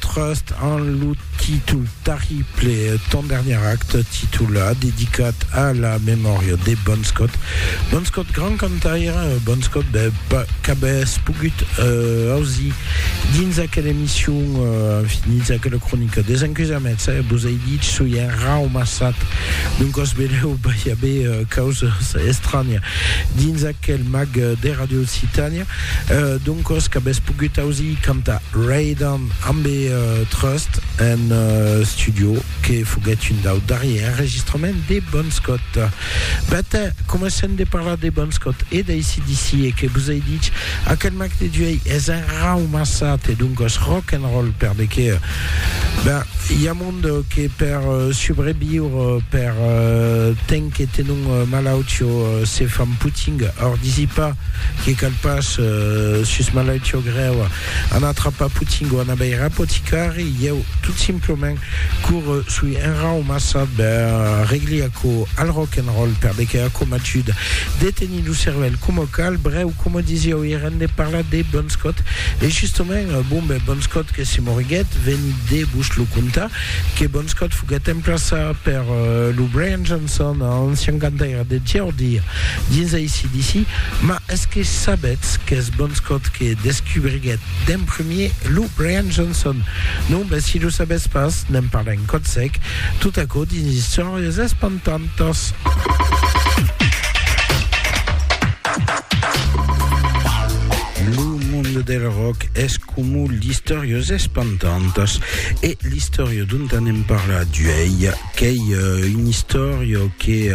Trust en lo títol terrible Ton dernier acte, títol dedicat a la memòria de Bon Scott. Bon Scott, grand cantaire, Bon Scott, ben, qu'avès pogut euh, ausir Dins aquela emission, enfin, dins aquela cronica des encusèments, eh, vos ai dich, soi enraumassat, d'un còs velèu vai aver causas estranya dins aquel mag de Radio Occitània, d'un còs qu'avètz pogut ausir cantar Ray Dan ambe Trust en studio, que foguèt un dau darrier enregistrament de Bon Scott. But, coma sèm de parlar de Bon Scott e d'ACDC e que vos ai dich, aquel mac de Duei es un rau massat e doncas rock and roll per de qué? Ben, i a mond que per subreviure, per temps que tenon malautió se fan puting, or disi pas que cal pas sus malautió grèu, Ana atrapa Potingo, Ana veir apoticari, ieu tot simplement corre sui un rau massa ben regli aquò al rock and roll perdeque aquò m'ajuda de tenir lo cervèl coma cal, brèu coma disieu ièr en de parlar de Bon Scott e justement bon ben Bon Scott que se moriguèt veni de vos lo contar que Bon Scott foguèt emplaçar per lo Brian Johnson ancian cantaire de Geordia dins ACDC ma Es que sabetz qu'es Bonscot que descubriguèt d'en premier lo Brian Johnson? Non? Ben, si lo sabètz pas, n'en parlem còth sec, tot aquò dins Istòrias espantantas. Lo monde del rock es comu l'Istòrias espantantas e l'istòria dont anem parlar d'uèi, Qu'ei un istòria que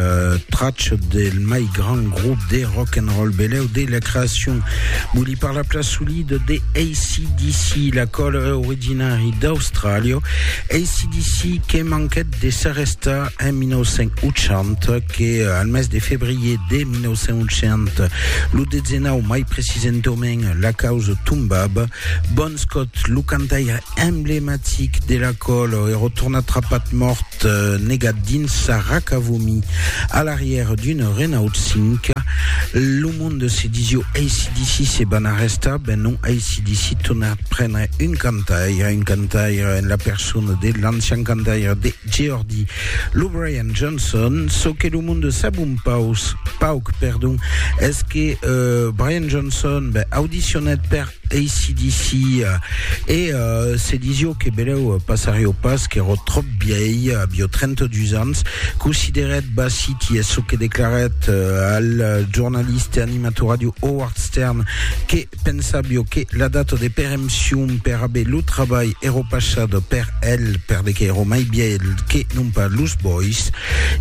tracha del mai grand grop de rock and roll beleu de la creacion. Voli parlar plan solid de ACDC, la qual è originari d'Austràlia. ACDC que manquèt de s'arrestar en 1980, que al mes de febrier de 1980, lo 19 mai precisentament, la causa tombava. Bon Scott, lo cantaire emblematic de la còlo e rotona trapat mòrt negat dins sa raca vomi a l'arrièr d'una Renault 5. Lo monde se disió ACDC se van arrestar, ben non ACDC torna prendre un cantaire, un cantaire en la persona de l'ancian cantaire de Geordi, lo Brian Johnson. Çò que lo monde sap un paus, pauc, perdon, es que euh, Brian Johnson ben, audicionèt per ACDC e se disio que beleu passarió pas qu'èro tròp bièi, avió 32 ans, considerèt Bassiti es çò que declarèt al jornalista e animator ràdio Howard Stern que pensavió que la data de perempcion per aver lo trabalh èro passat per el perde qu'èro mai bièl que non pas los bois.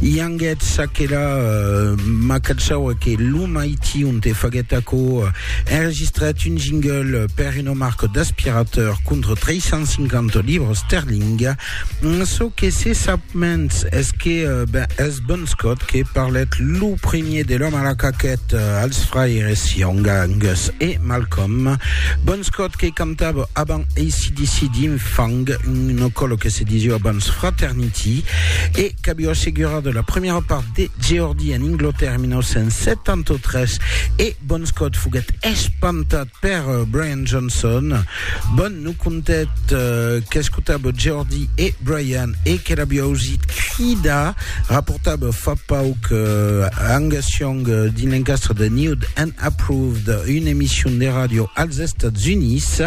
Ianguèt çaquelà, ma cachaue que lo mai Tion te faguèt aquò, enregistrèt un jingle per una marca d'aspirateur contra 350 libres esterling. Çò que se sap mens es que ben, es Bon Scott que parlèt lo premier de l'òme a la caquèt als fraires Young, Angus e Malcolm. Bon Scott que cantava avant ACDC dins Fang, una còla que se disiá abans Fraternity, e qu'aviá assegurat la premièra part de Geordi en Inglotèrra en 1973 e Bon Scott foguèt espantat per Brian Johnson. Bon no contèt qu'escotava Geordi e Brian e que l'aviá ausit cridar, raportava fa pauc Angus Young dins l'encastre de Nude and Approved, una emission de ràdio als Estats Units.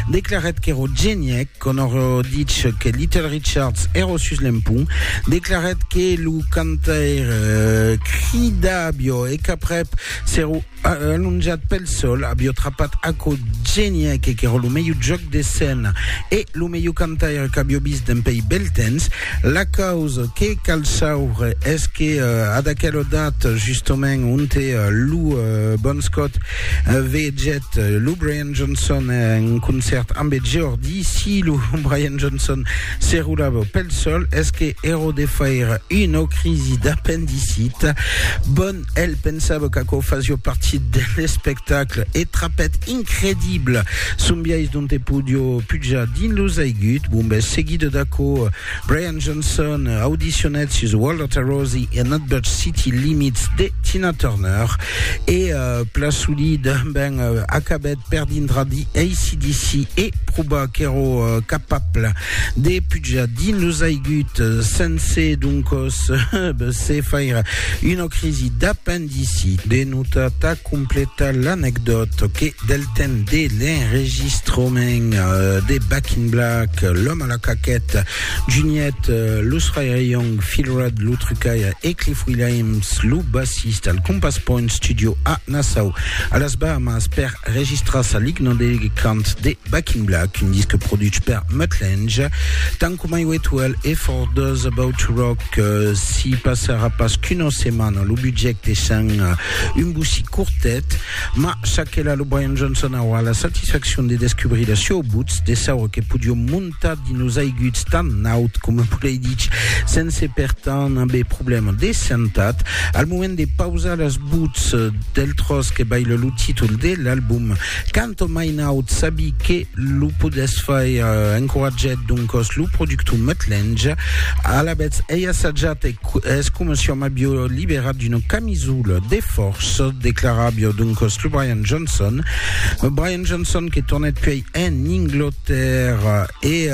Declarèt qu'èra genièc. Conor ditz que Little Richards è ro sus l'empont, declarèt que lo cantaire crida avió e qu'aprèp se ro alonjat pel sol, avió trapat aquò genièc qu'è ro lo melhor jòc de scèna e lo melhor cantaire qu'avió vist dempèi bèl temps. La causa que cal sauvre es que ad aquela data, justament, onte lo Bon Scott vegèt lo Brian. Johnson en concèrt ambe Geordi, si lo Brian Johnson se roulava pel sol, es que ero de faire una crisi d'apendicit. Bon, el pensava qu'aquò fasio partit de l'espectacle e trapèt incredible son biais dont e podio pujar dins los aigut, bon bes seguida d'aquò, Brian Johnson audicionèt sus Walter Tarosi e Nutbush City Limits de Tina Turner e uh, Plasuli ben uh, acabèt per dindra di ACDC e proba qu'èro uh, capable de pujar dins los aigut sense doncos se faire una crisi d'apendicite Ici, de nota tà completar l'anecdòt que del temps de l'enregistrament de Back in Black, L'Homme à la Caquette, Juniet, Lo Srairé Young, Phil Rudd, Lo Trucaire e Cliff Williams, lo bassista al Compass Point Studio a Nassau, a las Bahamas, per registrar sa ligna de cant de Back in Black, un disc produch per Mutt Lange, tant coma Wet Well e For Those About to Rock. que si passarà pas qu'una setmana lo budget deishant un bocí cortet, mas ça que la lo Brian Johnson aurà la satisfaccion de descubrir la sua butz, de saure que podiom montar dins los aiguts tan naut coma volei dich sense per tant aver problèma de santat. Al moment de pausar las butz del tròç que baila lo títol de l'album, Canton Mainaut sabi que lo podètz fai encoratgèt doncòs lo productor Muttlenge. Alavetz ei assajat e es coma si òm avió liberat d'una camisola de fòrça, declaravió doncòs lo Brian Johnson. Brian Johnson que tornèt puèi en Inglotèrra E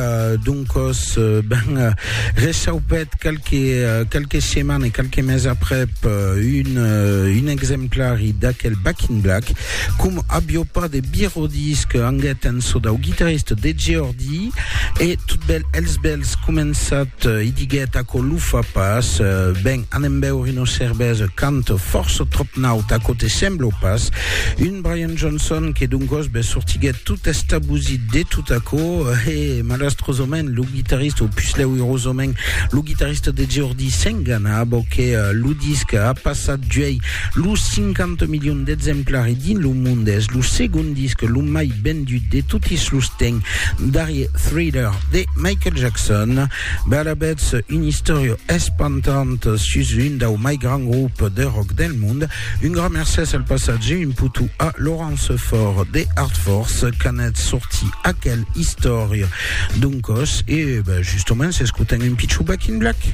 doncos, ben, rechaupèt qualque, qualque seman e qualque mes aprèp un, un exemplari d'aquel Back in Black, com avió pas de birodís que anguèt en çò dau guitarrista de Geordi, e tot bèl els bèls començat, i diguèt, aquò lo fa pas, ben, anem beure una cervesa, canta fòrça tròp naut, aquò te sembla o pas? Un Brian Johnson, que doncòs be sortiguèt tot estabosit de tot aquò, e malastrosament lo guitarrista, o pus lèu irosament, lo guitarrista de Geordi s'engana abò que eh, lo disc a passat d'uèi los 50 milions d'exemplari dins lo monde, es lo segond disc lo mai vendut de totis los temps darrier Thriller de Michael Jackson. Be alavetz, una istòria espantanta sus un dau mai grand grop de rock del monde, Un grand mercés al passatge imputu a Laurence Faure de Artfors qu'anèt sortir aquel istòria d'un còs e ben, justoments, escotem un pichon Back in Black.